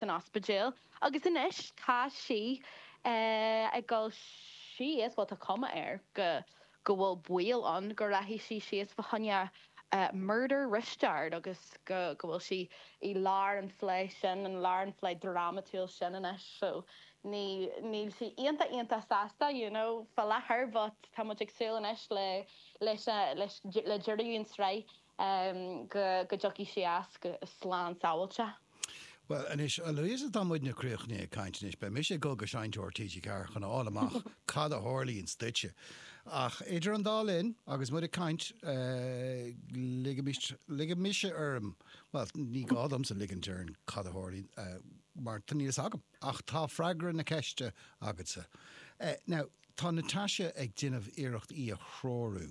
san ospidéal agus anois tá sí ag dul síos, bhuel tá cuma air go go bhfuil baol ann go rachaidh sí síos fa choinne Murder Risteárd agus go go bhfuil sí i lár an phlé sin, i lár an phlé drámatúil sin anois. So ní níl sí iontach iontach sásta you know faoi láthair but tá muid ag súil anois le leis a leis le deireadh an tsraith go dtiocfaidh sé as go slán sábháilte. Bhuel anois, a Louise, tá muidne críochnaithe ag caint anois. Beidh mise ag dul go seinnteoir TG4 chun a fháil amach cad a tharlaíonns duitse. Ach idir an dá linn, agus muid ag caint, ligfidh mise orm, bhuel, ní gá domsa ligint orm cad a tharlaíonn, mar níl fhios agam. Ach tá freagra na ceiste agatsa. Now, tá Natasha ag déanamh iarracht í a threorú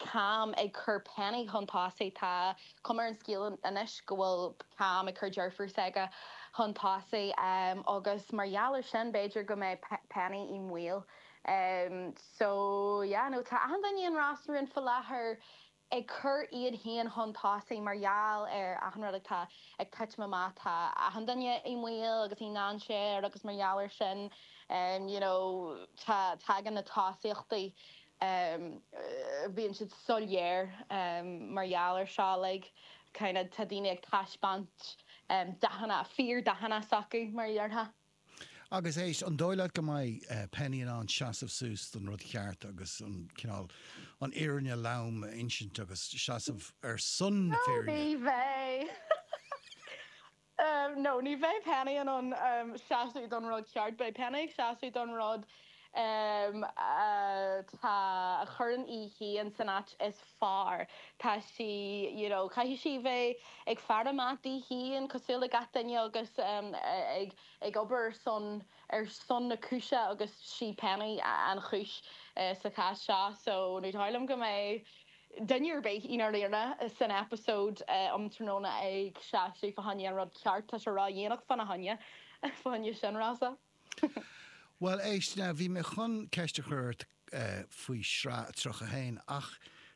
Cam ag cur Penny chun tosaigh. Tá cuma ar an scéal anois go bhfuil Cam ag cur deirfiúr s'aige chun tosaigh agus mar gheall ar sin b'fhéidir go mbeidh Penny i mbaol. So yeah no tá achan duine i Ros na Rún fá láthair ag cur iad féin chun tosaigh mar gheall ar achan rud atá ag titim amach. Tá achan duine i mbaol agus i ndainséar agus mar gheall ar sin you know tá tagann na tosaíochtaí. em bíonn siad soiléir em mar gheall ar seo like kind of tá daoine ag taispeáint em dathanna fíor dathanna s'acu mar a déarfá. Agus éist, an dóigh leat go mbeidh eh Penny in ann seasamh suas don rud cheart agus an cineál an fhírinne lom a insint agus seasamh ar son na fírinne? Ó ní bheidh! em, no, ní bheidh Penny in ann, em, seasamh don rud ceart, beidh Penny ag seasamh don rud, em, atá, a chuireann í féin san áit is fearr. Tá sí, you know, caithfidh sí bheith ag faire amach di féin cosúil le gach duine agus, em, ag, ag obair ar son, ar son na cúise agus sí Penny an chúis, eh, sa chás seo. So, ní dóigh liom go mbeidh. Duine ar bith i ndáiríre san eipeasóid um tráthnóna ag seasamh fá choinne, an rud ceart, tá sé ródhéanach fána choinne, fá choinne sin, Rossa. Bhuel, éist, now, bhí mé chun ceist a chur ort faoi shraith 31, ach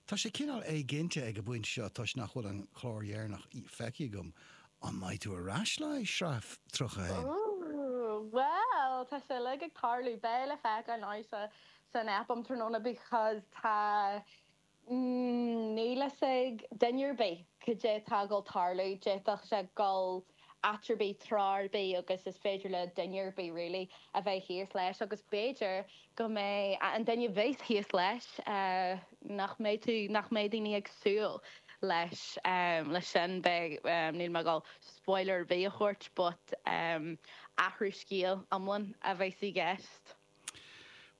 tá sé cineál éiginnte ag an bpointe seo toisc nach bhfuil an clár dheireanach feicthe agam, an mbeidh tú ar ais le haghaidh shraith 31? Ooh, bhuel, tá sé uilig ag tarlú, beidh le feiceáil now sa san aip um tráthnóna because tá níl fhios ag duine ar bith cad é atá ag dul tarlú, d'fhéadfadh sé dhul áit ar bith, treo ar bith agus is féidir le duine ar bith really a bheith thíos leis agus b'fhéidir go mbeadh an duine a bheas thíos leis nach mbeidh tú, nach mbeidh daoine ag súil leis leis sin beidh níl mé ag dul spoiler ar bith a thabhairt but athrú scéil iomlán a bheas i gceist.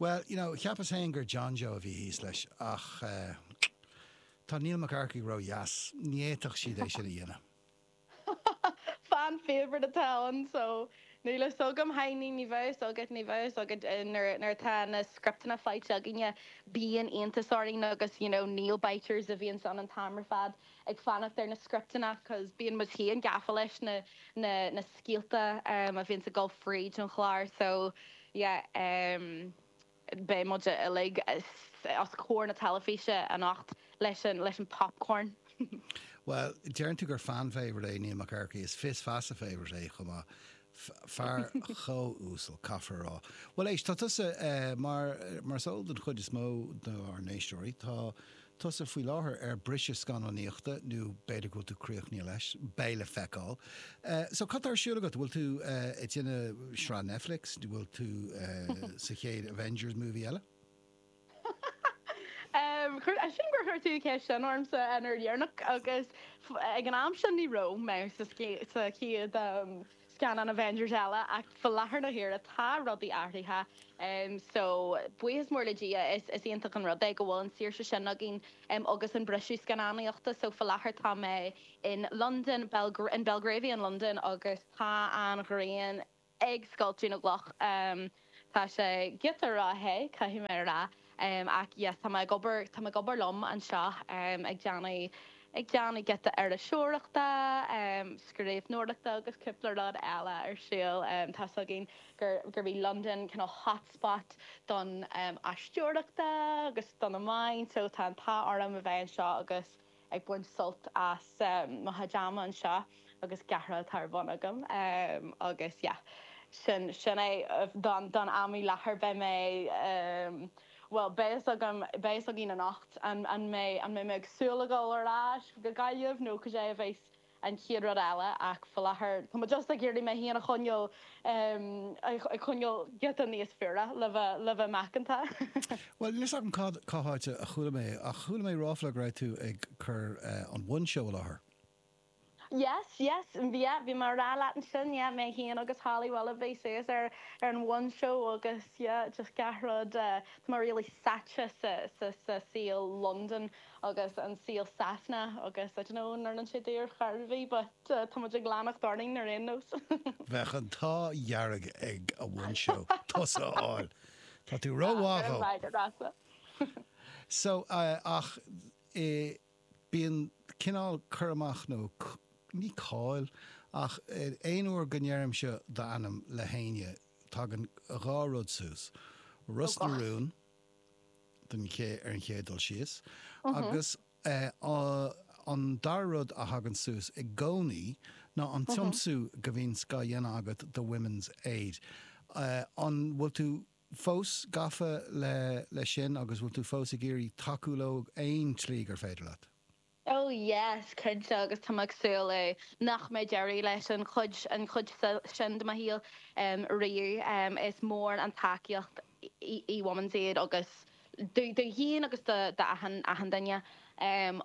Bhuel, you know, cheap mise féin gur John Joe a bhí thíos leis, ach eh, tá Neil Mac Earcaigh ródheas, ní fhéadfadh siad é sin a dhéanamh. Fan favorite atá ann, so níl fhios agam, haigh ní, ní bheadh fhios agat, ní bheadh fhios agat eh, nuair, nuair atá na scripteanna faighte againne, bíonn iontas orainn agus, you know, nail biters a bhíonns ann an t-am ar fad, ag fanacht ar na scripteanna cause bíonn muid féin gafa leis na na na scéalta em a bhíonns ag dul fríd an chlár so yeah em beidh muid uilig os comhair na teilifíse anocht leis an leis an popcorn. Bhuel, deireann tú gur fan favorite é Neil Mac Earcaigh, is fios feasa favorite é chomh maith. fear chomh uasal, caithfear a rá. Bhuel éist, tá tusa, mar, mar is eol don chuid is mó dár n-éisteoirí, tá tusa faoi láthair ar briseadh scannánaíochta, nó b'fhéidir go bhfuil tú críochnaithe leis, beidh le feiceáil. So, cad tá ar siúl agat? Bhfuil tú ag déanamh sraith Netflix? Bhfuil tú sa chéad Avengers movie eile? Chuir, sílim gur chuir tú an cheist sin ormsa an uair dheireanach agus ag an am sin ní raibh mé sa sa chéad scannán Avengers eile ach faoi láthair na huaire tá rudaí athraithe so buíochas mór le Dia is is iontach an rud é go bhfuil an saoirse sin againn agus an briseadh scannánaíochta so faoi láthair tá mé in Londain, in Belgravia in Londain agus tá an ghrian. ag scoilteadh na gcloch. Tá sé giota ró-the, caithfidh mé a rá, ach yes, tá mé ag obair, tá mé ag obair liom anseo, ag déanamh, ag déanamh giota iriseoireachta, scríbhneoireachta agus cúpla rud eile ar siúl. Tá's againn gur, gurb í Londain kind of hot spot don aisteoireachta agus don amharclann, so tá an t-ádh orm a bheith anseo agus. ag baint sult as mo chuid ama anseo agus gach rud atá ar bun agam agus yeah sin sin é don don am i láthair beidh mé bhuel beidh fhios agam beidh fhios againn anocht an an mbeidh an mbeidh mé ag súil le dhul ar ais go Gaillimh nó cad é a bheas An chéad rud eile ach faoi láthair tá muid just ag iarraidh muid féin a choinneáil, ag coinneáil giota níos fuaire le bheith macánta. Bhuel, níl 's agam cad, cá háit a chuala mé é, ach chuala mé ráfla go raibh tú ag cur an One Show i láthair. Yes, yes, yeah, bhí mé a' rá leat ansin, mé féin agus Holly Willoughby suas ar an One Show agus yeah, just gach rud, tá mé really sáite sa saol Londain. agus an saol Sasana agus I don't know an rinne sé daor charbhi but tá muid ag leanacht orainn ar aon nós. Bheadh an t-ádh dhearg ag an One Show tusa a fháil. Tá tú rómhaith dhó. So, ach eh bíonn cineál cur amach nó ní cáil ach aon uair go ndeirimse d'ainm le héinne tagann dhá rud suas, Ros na Rún, Donncha ar an chéad dul síos. Agus an dara rud a thagann suas i gcónaí ná an tiomsú go bhíonn á dhéanamh agat do Women's Aid. An bhfuil tú fós gafa leis sin agus bhfuil tú fós ag iarraidh tacú leo aon tslí gur féidir leat? Ó yes, cinnte, agus tá mé ag súil nach mbeidh deireadh leis an chuid, an chuid sin de mo shaol riamh. Is mór an tacaíocht í Women's Aid domh féin agus do achan, achan duine.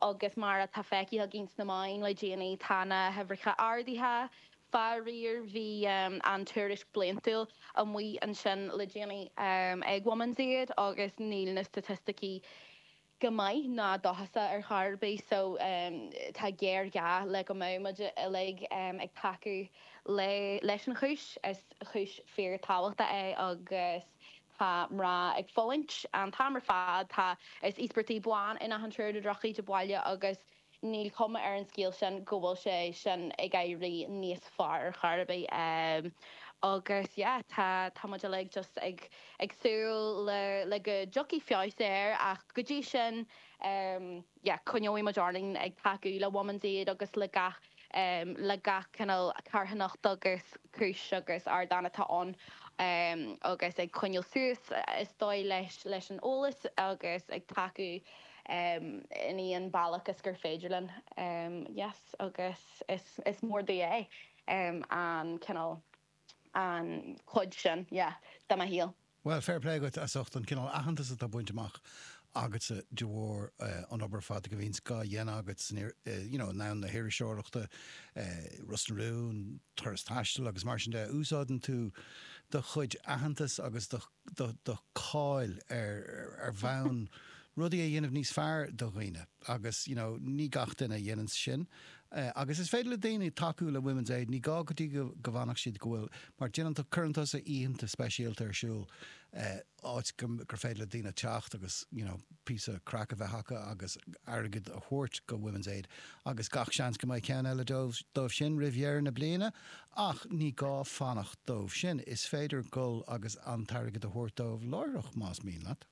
Agus mar atá feicthe againn sna meáin le déanaí, tá na huimhreacha ardaithe, faraor. Bhí an tuairisc bhliantúil amuigh ansin le déanaí ag Women's Aid agus níl na staitisticí, go maith ná dóchasach ar chor ar bith so tá géarghá le go mbeadh muid uilig ag tacú leis an chúis. Is cúis fíorthábhachtach é agus tá mná ag fulaingt an t-am ar fad, tá, is íospartaigh bean in achan triúr de dhrochíde baile agus. Níl cuma ar an scéal sin go bhfuil sé sin ag éirí níos fearr ar chor ar bith. Agus yeah, tá tá muid uilig just ag ag súil le le go dtiocfaidh feabhas air ach go dtí sin yeah, coinneoidh muid orainn ag tacú le Women's Aid agus le gach le gach cineál carthanacht agus cúis agus ardán atá ann agus ag coinneáil suas is dóigh leis leis an eolas agus ag tacú in aon bhealach is gur féidir linn. yes agus is mór domh é. an cineál an chuid sin yeah de mo shaol. Bhuel, fair play dhuit as ucht an cineál aitheantas atá bainte amach agatsa de bharr an obair ar fad a bhíonns dhá dhéanamh agat you know i ngort na hiriseoireachta, Ros na Rún, Turas Taistil agus mar sin de. Úsáideann tú do chuid aitheantas agus do. do cháil ar bhonn rudaí a dhéanamh níos fearr do dhaoine agus you know ní gach duine a dhéananns sin agus is féidir le daoine tacú le Women's Aid ní gá go dtí go bhfanfadh siad go bhfuil mar déanann tú cuireann tusa oícheanta speisialta ar siúl áit go gur féidir le daoine teacht agus you know píosa craic a bheith acu agus airgead a thabhairt go Women's Aid agus gach seans go mbeidh ceann eile díobh sin roimh dheireadh na bliana Ach ní gá fanacht dóibh sin, is féidir gul agus an t-airgead a thabhairt dóibh láithreach, más mian leat.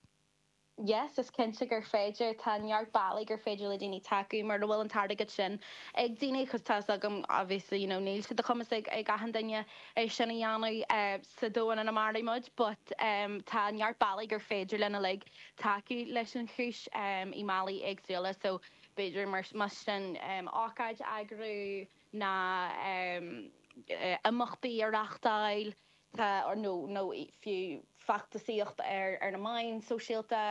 Yes, is cinnte gur féidir. Tá neart bealaí gur féidir le daoine tacú mura bhfuil an t-airgead sin ag daoine, agus tá 's agam, obviously, you know, níl sé de chumas ag achan duine é sin a dhéanamh sa domhain ina maireann muid, but tá neart bealaí gur féidir linn uilig tacú leis an chúis i mbealaí éagsúla, so b'fhéidir, más sin, ócáid a eagrú, nó imeachtaí a reáchtáil nó fiú feachtasaíocht ar na meáin shóisialta.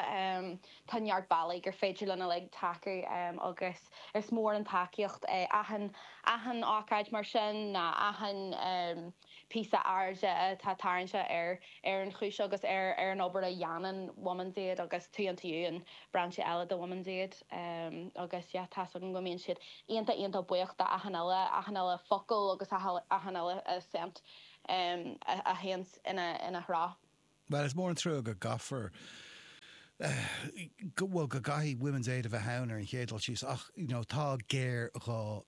Tá neart bealaí gur féidir linn uilig tacú agus is mór an tacaíocht é achan ócáid mar sin, achan. píosa airde atá tarraingthe ar ar an chúis agus ar ar an obair a dhéanann Women's Aid agus Tuí an tSiúin, brainse eile de Women's Aid. Agus yeah, tá's agam go mbíonn siad iontach iontach buíoch de achan uile, achan uile focal agus achan uile cent a théann ina dtreo. Bhuel, is mór an trua go gcaithfear eh, bhuel go gcaithfidh Women's Aid a bheith ann ar an chéad dul síos ach you know tá géarghá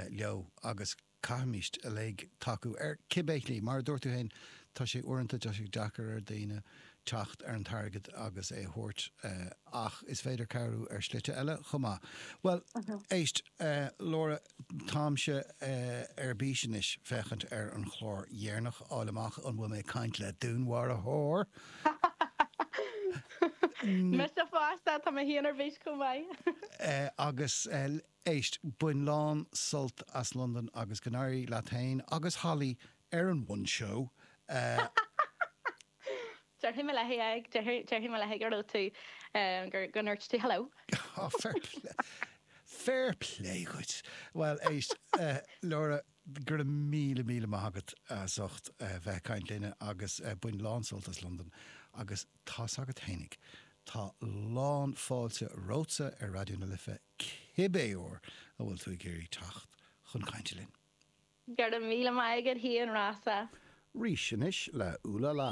leo agus, Caithfimid uilig tacú, ar cibé shlí. Mar a dúirt tú féin, tá sé uaireanta deacair ar dhaoine teacht ar an t-airgead agus é a thabhairt, ach is féidir cabhrú ar shlite eile chomh maith. Bhuel, éist, Laura, táimse ar bís anois féachaint ar an chlár dheireanach, fháil amach an bhfuil mé ag caint le dúnmharaitheoir! Mise fosta, tá mé féin ar bís chomh maith! Agus Éist, bain lán sult as Londain agus go n-éirí leat féin agus Holly ar an One Show! Déarfaidh mé léi é, déarfaidh mé léi go raibh tú, go ndúirt tú hello. Oh, fair play, fair play dhuit! Bhuel, éist, Laura, go raibh míle míle maith agat as ucht bheith ag caint linne agus bain lán sult as Londain agus tá's agat fhéinig, tá lán fáilte romhatsa ar Raidió na Life cibé uair a bhfuil tú ag iarraidh teacht chun cainte linn. Go raibh míle maith agat Shane Rossa. Rís anois le Ooh La La.